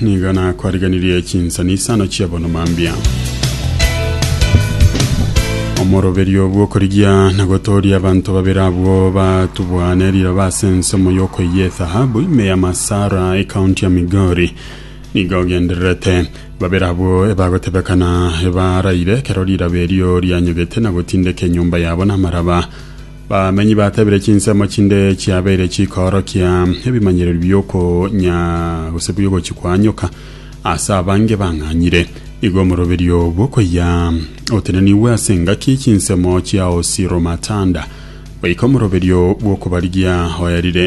Nigo nakwariganirie chinsanisano chiabono mambia omoroberio bw'okorigia na gotooria abanto babere abwo batubwane riroba ase ensomo y'okoiyia ethahabu ime ya masara ekaunti ya migori nigo ogendererete babere abwo ebagotebekana ebaraire ekero riroba erio rianyogete na gotindeka enyomba yabo namaraba Bamenyi batabire chinsemo chinde chiabeire chikoorokia ebimanyererio bi'okonya gose bi'ogochia kwa nyoka. Ase abange bang'anyire, igo omoroberio bw'okoyia otenenigwe ase engaki chinsemo chiaosiromatanda, goika omoroberio bw'okobarigia oerire.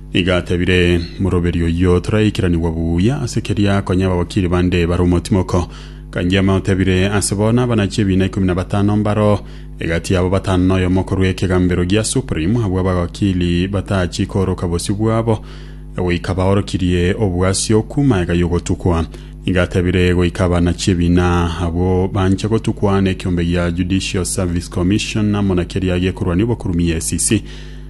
Nigo atebire, Moroberio oyio toraikeranigwa buya, ase keria konya ababakiri bande bare omotimoko. Kangiame otebire, Ase bono abanachi ebiina ikomi na batano mbaro, egati yabo batano noyomo korwa ekegambero gia Supreme, abwo abagakiri batachie kooroka bosio bwabo, goika baorokirie obwasi okwo magega y'ogotukwa. Nigo atebire, Goika abanachi ebiina abwo banche gotukwa nekiombe gia Judicial Service Commission amo na keria gekorwania obokurumiy, SCC.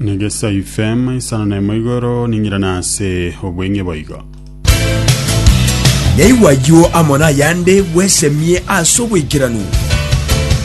Negesa ifema isano na emo igoro ning'irana ase obweng'e boigo. Naigwa ayio amo nayande bwesemie ase oboikeranu.